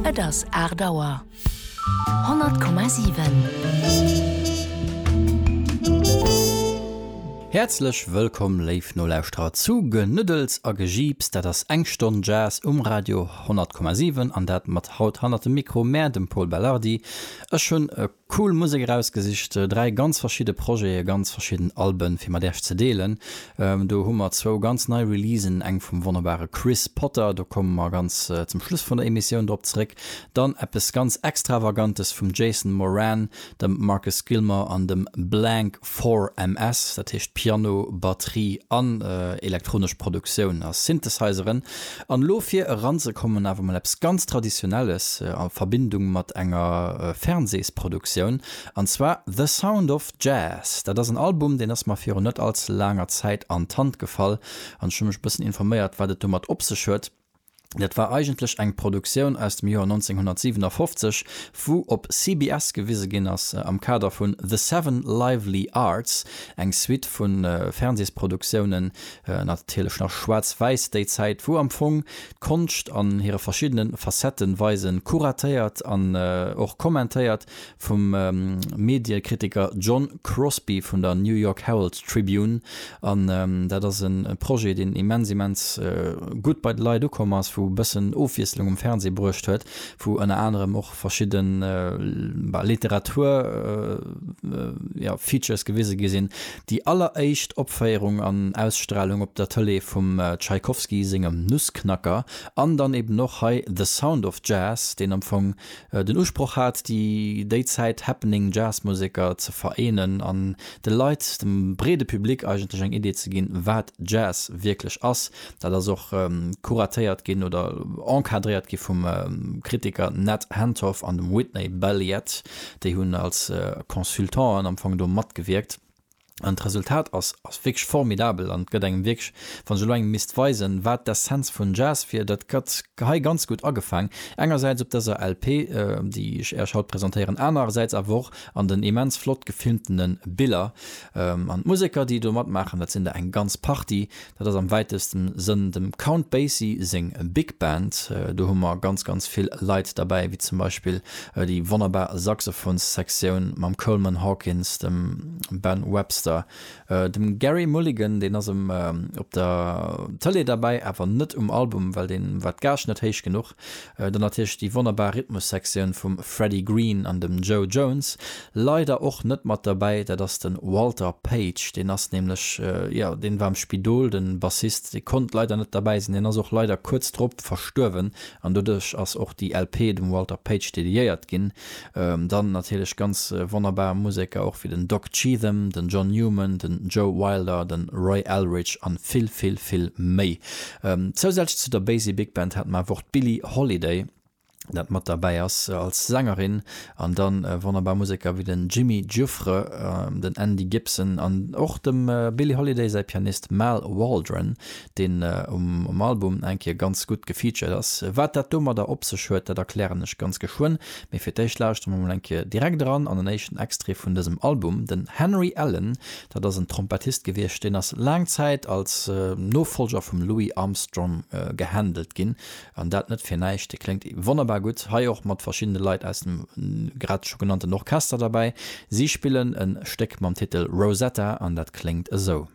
Et ass aacht Auer. 100,7. Häerzlech wëllkomm, léif Nolauschterer, zu Genëddels a Gejiips. Dat ass eng Stonn Jazz um Radio 100,7 an dat mat haut hannert dem Mikro, mär, dem Pol Belardi. Ech hunn e Cool Musek erausgesicht, dräi ganz verschidde Projete, ganz verschidden Alben fir mat Iech ze deelen. Do hu mer zwou ganz nei Releasen, eng vum wonnerbare Chris Potter, do komme mer ganz zum Schluss vun der Emissioun drop zeréck, dann eppes ganz Extravagantes vum Jason Moran, dem Marcus Gilmore an dem Blank Four MS, dat heescht Piano, Batterie an elektronesch Produktioun a Synthesizeren. An elo fir eranzekommen awer mol eppes ganz Traditionelles a Verbindung mat enger Fernsehsproduktioun, an zwar The Sound of Jazz. Dat ass en Album, deen ass mer virun net allze laanger Zäit an d'Hand gefall an ech hu mech e bëssen informéiert, wat et domat op sech huet. Dat war eigentlech eng Produktioun aus dem Joer 1957, wou op CBS gewise ginn ass am Kader vun The Seven Lively Arts, eng Suite vu Fernsehsproduktiounen, natierlech nach schwaarz-wäiss déi Zäit, wou am Fong d'Konscht an hire verschiddene Facetten weisen, kuratéiert an och kommentéiert vum Mediekritiker John Crosby vun der New York Herald Tribune an dat ass e Projet deen immens immens gutt bei de Leit ukomm ass, wou e bëssen Ofwiesslung um Fernseh bruecht huet, wou ënner anerem och verschidde Literatur jo Features gewise gi sinn. Déi alleréischt Opféierung an Ausstralung op der Tëlee vum Tschaikowski sengem Nussknacker an dann eben och hei The Sound of Jazz, deen am Fong den Usproch hat, déi déi Zäit happening Jazzmuseker ze vereenen an de Leit, dem breede Public eigentlech eng Idee ze ginn, wat Jazz wierklech ass. Dat ass och kuratéiert ginn oder encadréiert gi vum Kritiker Ned Hentoff an dem Whitney Balliet, déi hunn als Consultanten am Fong do matgewierkt. An d'Resultat ass ass wierklech formidabel an gëtt engem wierklech, wann ech elo engem misst weisen, wat d'Essenz vun Jazz wier, dat gëtt hei ganz gutt agefaang, engersäits op dëser LP, déi ech Äerch haut presentéieren, anerersäits awer och an den immens flott gefilmtene Biller. An d'Museker, déi do matmaachen, dat sinn der eng ganz Partie, Dat ass am wäitesten Sënn dem Count Basie seng Big Band. Do hu mer ganz ganz vill Leit derbäi, wéi zum Beispill déi wonnerbar Saxophons-Sektioun mam Coleman Hawkins, dem Ben Webster, dem Gerry Mulligan, deen ass op der Tëlee derbäi, awer net um Album, well deen war d'Gage net héich genuch. Dann natierlech déi wonnerbar Rhythmussektioun vum Freddie Green an dem Joe Jones. Leider och net mat derbäi, dat ass de Walter Page. Deen ass nämlech, jo, deen war am Spidol, de Bassist. Dee konnt leider net derbäi sinn. Deen ass och leider kuerz drop verstuerwen an doduerch ass och déi LP dem Walter Page dediéiert ginn. Dann natierlech ganz wonnerbar Museker och wéi den Doc Cheatham, den John Newman, den Joe Wilder, den Roy Eldridge an vill vill vill méi. Zousätzlech zu der Basie Big Band haten mer awer och d'Billie Holiday dat mat derbäi ass als Sängerin an dann wonnerbar Museker wéi den Jimmy Giuffre, den Andy Gibson an och dem Billie Holiday säi Pianist Mal Waldron deen um Album eng Kéier ganz gutt gefeatured ass. Wat dat domadder op sech huet, dat erklären ech ganz geschwënn, mee fir d'éischt lauschteren mer mol eng Kéier direkt eran an en éischten Extrait vun dësem Album. Den Henry Allen, dat ass en Trompettist gewiescht, deen ass laang Zäit als Nofolger vum Louis Armstrong gehandelt ginn, an dat net fir näischt. Dee kléngt wonnerbar gutt hei, och mat verschiddene Leit aus dem grad scho genannten Orchester derbäi. Si spillen e Stéck mam Titel Rosetta an dat kléngt esou.